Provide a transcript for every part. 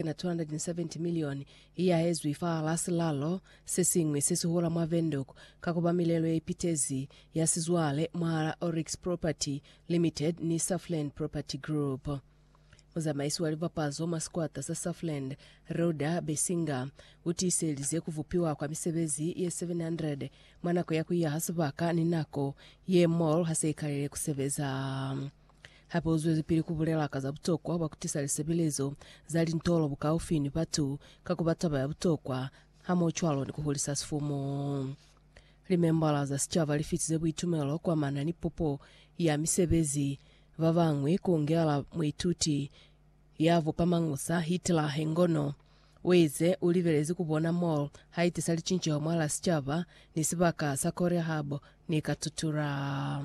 na 270 milioni i yaezwi fahal'a silalo se siñwi se sihula mwa Windhoek ka ku ba milelo ye ipitezi ya sizwale mwahal'a Oryx Property Limited ni Safland Property Group. Muzamaisi wa libapazo mwa sikwata sa Safland, Reuda Besinger, u tiiselize ku bupiwa kwa misebezi ye 700 mwa nako ya ku iyaha sibaka ni nako ye mall ha se i kalile ku sebeza. Hape uzwelipili kubulela ka za butokwa bwa kutisa lisebelezo za lintolo bukaufi ni batu ka kuba taba ya butokwa hamohocwalo ni kuhulisa sifumu. Limembala za sicaba lifitize buitumelo kwamana ni pupo ya misebezi, babañwi kuungela muituti ya bupa mañusa Hitler hengono. Uize ulibelezi kubona mall haitisa licinceho mwala sicaba ni sibaka sa Korea Harbour ni Katutura.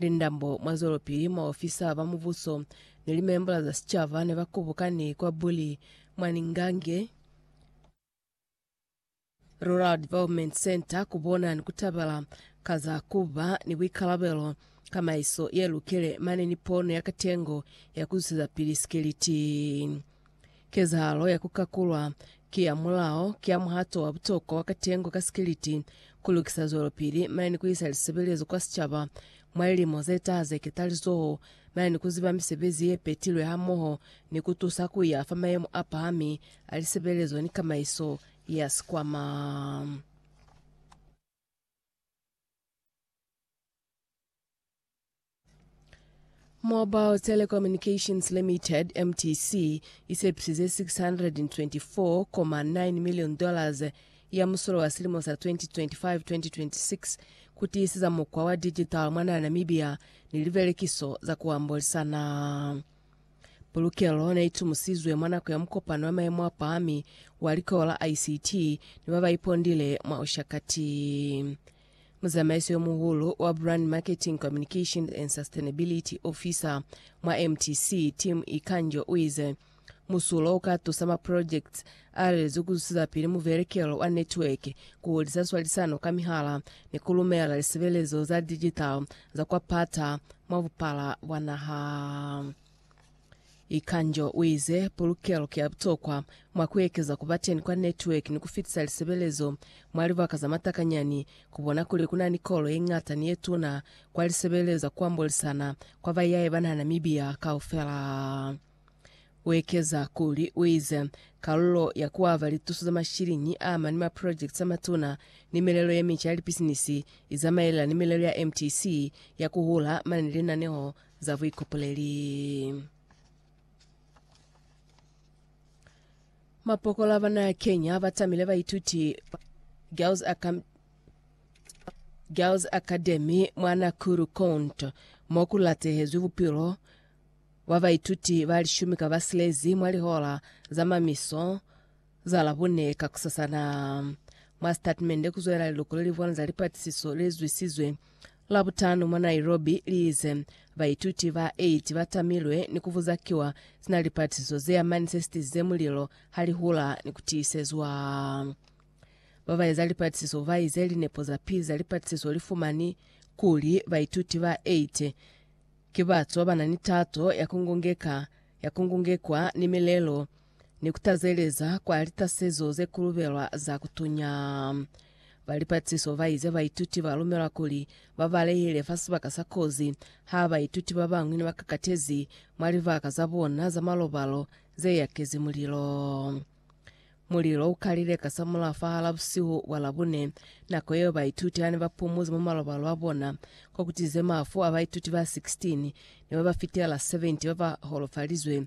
Lindambo, mwazwelopili, maofisa ba mubuso ni limembola za sicaba nebakubukani kwa Buli mwa Ningange Rural Development Centre kubona ni kutabela ka za kuba ni buikalabelo, kamaiso yelukile mane ni pono ya katengo ya kuzwisezapili sikiliti. Kezahalo ya ku kakulwa ki ya mulao, ki ya muhato wa butokwa wa katengo ka sikiliti, ku lukisa zwelopili, mane ni ku isa lisebelezo kwa sicaba mwa lilimo ze taha ze ketalizoho, mane ni ku ziba misebezi ye petilwe hamoho ni ku tusa ku ya fa mayemo a pahami a lisebelezo ni kamaiso ya sikwama. Mobile Telecommunications Limited, MTC, isepisize 624.9 million dollars ya musulo wa silimo sa 2025-2026 kutiisiza mukwa wa digital mwa naha Namibia ni libelekiso za kuambolisana. Pulukelo neitumusizwe mwa nako ya mukopano wa maemo a pahami wa likowa la ICT ni babaipondile mwa Ushakati. Muzamaisi yo muhulu wa Brand Marketing, Communication and Sustainability Officer mwa MTC, Tim Ikanjo uize, Musulo uka tusa ma projects alelezwi kuzwisizapili muvelekelo wa network, kuhulisa swalisano ka mihala ni kulumela lisebelezo za digital za kwa pata mwa bupala bwa naha. Ikanjo uize, Pulukelo ki ya butokwa mwa kuekeza kubateni kwa network ni kufitisa lisebelezo mwa libaka za matakanyani. Kubona kuli kunani kolo yeñata ni yetuna kwa lisebelezo za kuambolisana kwa bayaye bana Namibia kaufela. Uekeza kuli, uize, Kalulo ya kuaba lituso za mashiliñi aamani mwa projects amatuna ni milelo yemica ya lipisinisi izamaelana ni milelo ya MTC ya kuhula mane ni linaneho za buikopoleli. Mapokola ba naha ya Kenya ba tamile baituti Girls Acam- Girls Academy mwa Nakuru Cont mo ku latehezwi bupilo bwa baituti ba lishumi ka ba silezi mwa lihola za mamiso Za Labone kakusasana, mwa sitatimende kuzwelela liluko lelihulwane za lipatisiso lelizwisizwe Labutanu mwa Nairobi, liize, Baituti ba 8 batamilwe ni kubuza kiwa sina lipatisiso zeamani sesitizize mulilo halihula ni kutiisezwa. Babaeza lipatisiso baize linepo zapili za lipatisiso lifumani kuli baituti ba 8 ki batu babanani tato ya kungungeka ya kungungekwa ni milelo ni ku tazeleza kwa litasezo ze kulubelwa za ku tunya. Ba lipatiso ba ize baituti ba lumelwa kuli ba balehele fa sibaka sa kozi ha baituti ba bañwi ne ba kakatezi mwa libaka za bona za malobalo ze yakezi mulilo. Mulilo u kalile kasamulaho fahal'a busihu bwa Labune, nako yeo baituti ha ne ba pumuzi mwa malobalo a bona, ko kutize mafu a baituti ba 16 ni ba ba fitela 70 ba ba holofalizwe